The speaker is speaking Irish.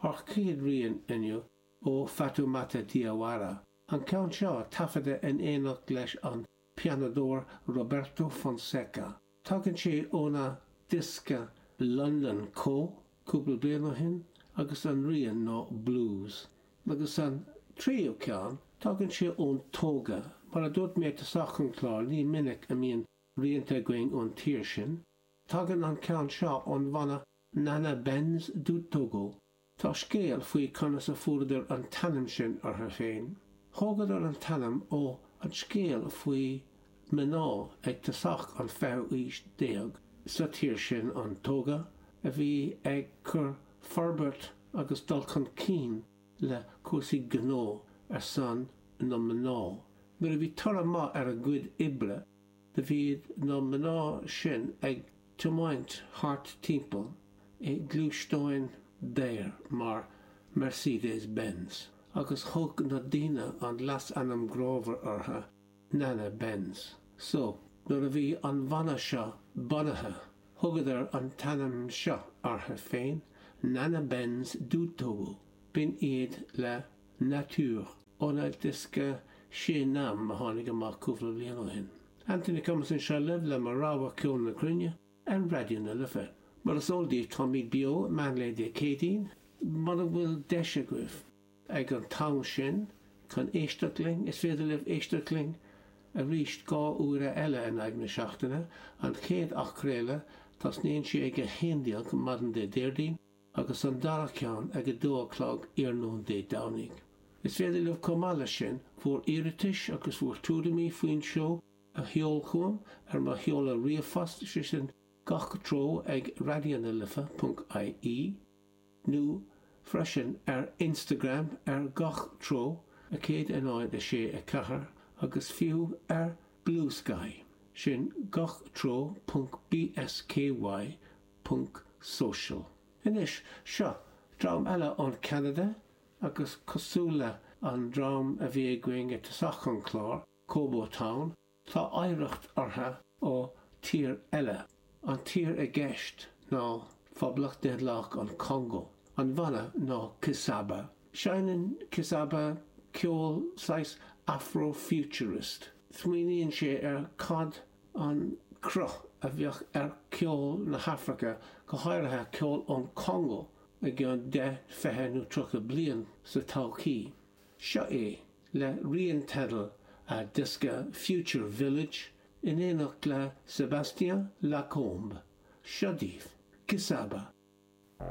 An chéad rian inniu ó Fatoumata Diawara an ceann seo taifeadta in éineacht leis an pianódóir Roberto Fonseca. Tagann sé óna diosca London Ko cúpla bliain ó shin agus an rian ná Blues. Agus an tríú ceann, tagann sé ón Tóga. Mar a dúirt mé i dtosach an chláir, ní minic a mbíonn rianta againn ón tír sin. Tagann an ceann seo ón bhanna Nana Benz du Togo. Tá scéal faoi conas a fuaireadar an t-ainm sin orthu féin. Thógadar an t-ainm ó an scéal faoi mná ag tosach an 20ú aois déag sa tír sin, an Tóga, a bhí ag cur forbairt agus dul chun cinn le cúrsaí gnó ar son na mná. Nuair a bhí toradh maith ar a gcuid oibre, Do bhí na mná sin ag tiomáint thart timpeall i ngluaisteáin daor mar Mercedes Benz agus thug na daoine an leasainm grámhar ortha, Nana Benz. So, nuair a bhí an bhanna seo bunaithe, thugadar an t-ainm seo ortha féin, Nana Benz du Togo, b'in iad le Nature. óna diosca Sé Nam a tháinig amach cúpla bliain ó shin. Anthony Cummins anseo libh le mo rogha ceol na cruinne ar Raidió na Life. Mar is eol daoibh táimid beo meán lae Dé Céadaoin, mura bhfuil deis agaibh ag an t-am sin chun éisteacht linn, is féidir libh éisteacht linn arís dhá uaire eile in aghaidh na seachtaine, an chéad athchraoladh, tosnaíonn sé ag a haon déag maidin Dé Déardaoin, agus an dara ceann ag a dó a chlog iarnóin Dé Domhnaigh. Is féidir libh chomh maith leis sin bhur iarratais agus bhur tuairimí faoin seó a sheol chugam ar mo sheoladh ríomhphost, sé sin gach treo ag raidionalife ponc IE, nó freisin ar Instagram ar gach treo a 106 4 agus fiú ar Bluesky, sin gach treo ponc BSKY ponc social. Anois, seo dream eile ón Ceanada agus cosúil le an dream a bhí againn i dtosach an chláir, Kobo Town, tá oidhreacht ortha ó tír eile. An tír i gceist ná Phoblacht Daonlathach an Congo. An bhanna ná Kizaba. Seineann Kizaba ceol saghas Afro-futurist. Smaoiníonn sé ar cad an cruth a bheadh ar cheol na hAfraice, go háirithe ceol ón Congó i gceann deich, fiche nó tríocha bliain sa todhchaí. Seo é, le rian teidil a diosca Future Village, in éineacht le Sébastien Lacombe. Seo daoibh, Kizaba.